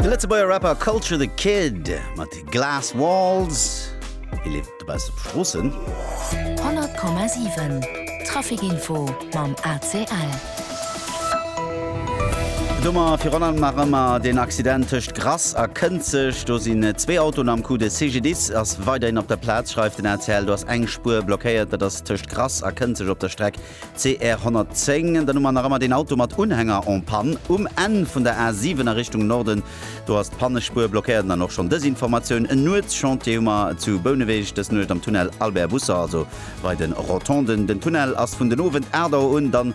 De Lëtzebuerger Rapper Kulture the Kid mat Glass Walls. Hie leeft dobauss op Stroossen. 100,7 Traficinfo mam ACL. Domat virun allem nach ëmmer den Accident tëscht Grass a Kënzeg. Do sinn zwee Autoen am Coup. De CGDIS ass weiderhin op der Plaz, schreift den ACL. Do ass eng Spuer blockéiert, dat ass tëscht Grass a Kënzeg op der Streck CR 110, dann hu mer nach ëmmer deen Auto mat Unhänger en Panne um Enn vun der A7 a Richtung Norden. Do ass d'Pannespuer blockéiert. An dann och schonn dës Informatioun, En Nuetschantier hu mer zu Bouneweg dës Nuecht am Tunnel Albert Busser, also bei de Rotonden. Den Tunnel ass vun den Owend 8 Auer un dann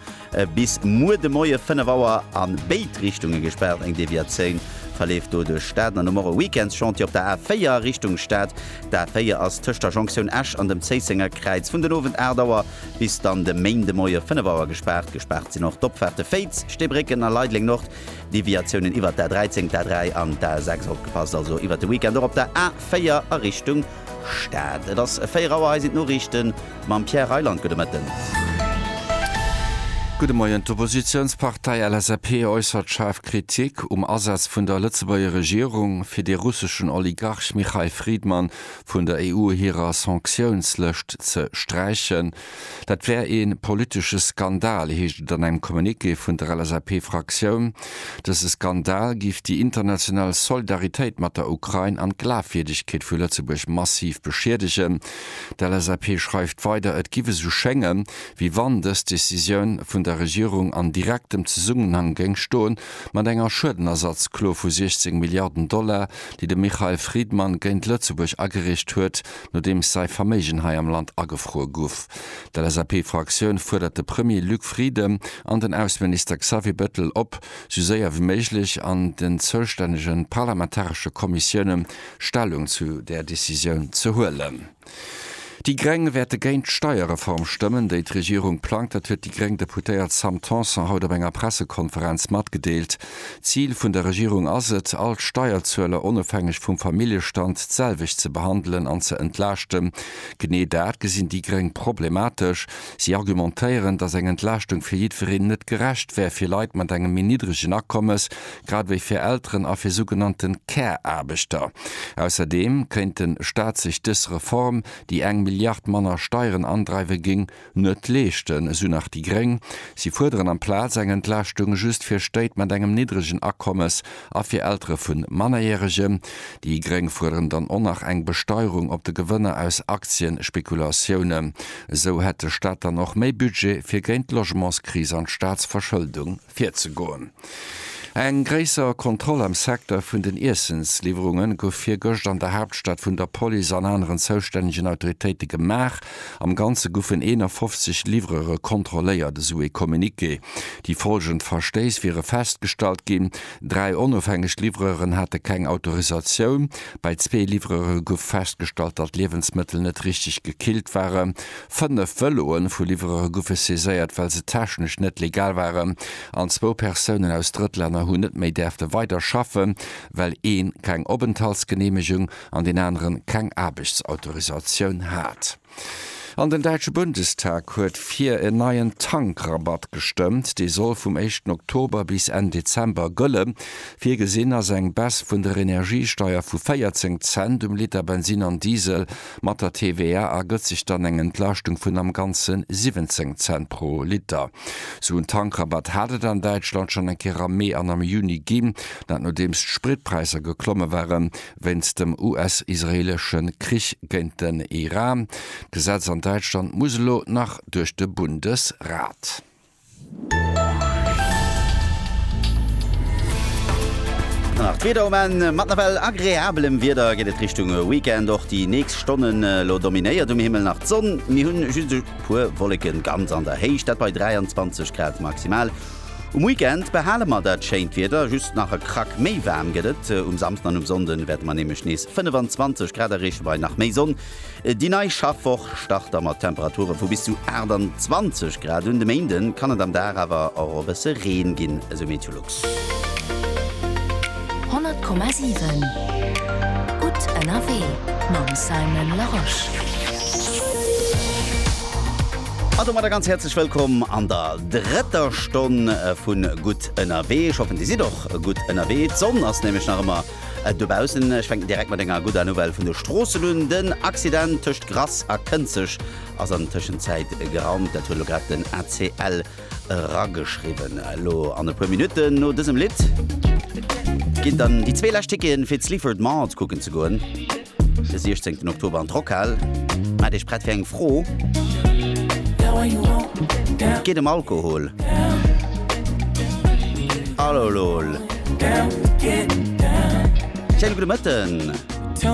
bis muer de Moie 5 Auer a béid Richtunge gespaart. Eng Deviatioun verleeft do duerch Stad. An dann hu mer e Weekendschantier op der A4 Richtung Stad. D'A4 ass tëscht der Jonktioun Esch an dem Zéissenger Kräiz vun den Owend 8 Auer Bis dann de Méinde Moie 5 Auer gespaart. Gespaart sinn och d'Opfaarte Féiz, Steebrécken a Leideleng-Nord. Deviatiounen iwwert d'A13, d'A3 an d'A6. Opgepasst also iwwert de Weekend och op der A4 a Richtung Stad. Et ass 4 Auer, hei sinn d'Noriichte mam Pierre Reyland. Gudde Mëtten. Gudde Moien. D'Oppositiounspartei LSAP äussert schaarf Kritik um Asaz vun der Lëtzebuerger Regierung, fir de russeschen Oligarch Michail Fridman vun der EU hirer Sanktiounslëscht ze sträichen. Dat wär ee politesche Skandal, heescht et an engem Communiqué vun der LSAP-Fraktioun. Dëse Skandal géif déi international Soldaritéit mat der Ukrain an d'Glafwierdegkeet vu Lëtzebuerg massiv beschiedegen. D'LSAP schreift weider, et giff esou schénge wéi wann dës Decisioun vun der Regierung an direktem Zesummenhang géing stoen mat enger Schuedenersatzklo vu 16 Milliarden Dollar, déi de Michael Friedman géint Lëtzebuerg agericht huet, nodeems säi Verméigen hei am Land agefruer guff. D'LSAP-Fraktioun fuerdert de Premier Luc Frieden an den Ausseminister Xavier Bettel op, sou séier wéi méiglech an den zoustännege parlamentaresche Kommissiounen Stellung zu där Decisioun ze huelen. Déi Greng wäerte géint d'Steierreform stëmmen, déi d'Regierung plangt. Dat huet déi gréng Deputéiert Sam Tanson haut op enger Pressekonferenz matgedeelt. D'Zil vun der Regierung ass et, all d'Steierzueler onofhängeg vum Familljestand d'selwecht ze behandelen an ze entlaaschten. Genee dat gesinn déi Gréng problematesch. Si argumentéieren, datt eng Entlaaschtung fir jiddwereen net gerecht wär, fir Leit mat engem méi niddregen Akommes, grad ewéi fir Elteren a fir sougenannte Care-Aarbechter. Ausserdeem kéint de Staat sech dës Reform, déi eng Milliard manner Steieren andreiwe géing, net leeschten, esou nach déi gréng. Si fuerderen amplaz eng Entlaaschtung just fir Stéit mat engem niddregen Akommes. a fir Eltere vun Mannerjäregen. Déi Gréng fuerderen dann och nach eng Besteierung op de Gewënner aus Aktienspekulatiounen. Esou hätt de Staat dann och méi Budget fir géint d'Logementskris an d'Staatsverschëldung virzegoen. Eng gréisser Kontroll am Secteur vun den Iessensliwwerungen gouf virgëscht an der Haaptstad vun der Police an aneren zoustännegen Autoritéite gemaach. Am Ganze goufen 51 Livrere kontrolléiert, esou ee Communiqué. Déi follgend Verstéiss wiere festgestallt ginn, Dräi onofhängeg Livreuren hate keng Autorisatioun, bei zwee Livreure gouf festgestallt, datt Liewensmëttel net richteg gekillt waren, fënnef Vëloe vu Livreure goufe saiséiert, well se technesch net legal waren an zwou Persounen aus Drëttlänner hunn net méi däerfte weider schaffe well ee keng Openthaltsgeneemegung an deen anere keng Aarbechtsautorisatioun hat. An den däitsche Bundestag huet fir en neien Tankrabatt gestëmmt. Dee soll vum éischten Oktober bis Enn Dezember gëllen. Virgesinn ass eng Baisse vun der Energiesteier vu 14 Cent um Liter Bensin an Diesel. Mat der TVA ergëtt sech dann eng Entlaaschtung vun am Ganze 17 Cent pro Liter. Sou en Tankrabatt hat et an Däitschland schonn eng Kéier am Mee an am Juni ginn, dat nodeems d'Spritpräisser geklomme waren. wéinst dem US-israeelesche Krich géint den Iran. D'Gesetz an Däitschland muss elo nach duerch de Bundesrat. An nach d'Wieder um Enn. Mat nawell agreabelem Wieder geet et Richtung Weekend. Och déi nächst Stonnen elo dominéiert um Himmel nach d'Sonn. Mir hunn just e puer Wolleken ganz an der Héicht, dat bei 23 Grad maximal. Um Weekend behale mer dat schéint Wieder, just nach e Krack méi waarm gëtt et. Um Samsden an um Sonnde wäerte mer nämlech nees 25 Grad erreeche bei nach méi Sonn. Déi nei Schaffwoch start da mat Temperature vu bis zu 28 Grad. Un de Méinde kann et am Dag awer och e bësse Reen ginn, esou Meteolux. 100,7 gutt ënnerwee mam Simon Larosche. A domadder ganz häerzlech wëllkomm an der. drëtter Stonn vun Gutt ënnerwee. Ech hoffen dir sidd och gutt ënnerwee. D'Sonn ass nämlech nach ëmmer dobaussen. Ech fänken direkt mat enger gudder Nouvelle vun de Stroossen un. Den Accident tëscht Grass a Kënzeg ass an Tëschenzäit geraumt. Dat huet elo grad den ACL erageschriwwen. Elo an e puer Minutten no dësem Lidd ginn dann déi zwee lescht Ticketen fir d'Sleaford Mart kucken ze goen. De 16 Oktober an d'Rockhal. Maat iech prett fir eng Fro. Et geet em Alkohol. Alolol. Schéine gudde Mëtten.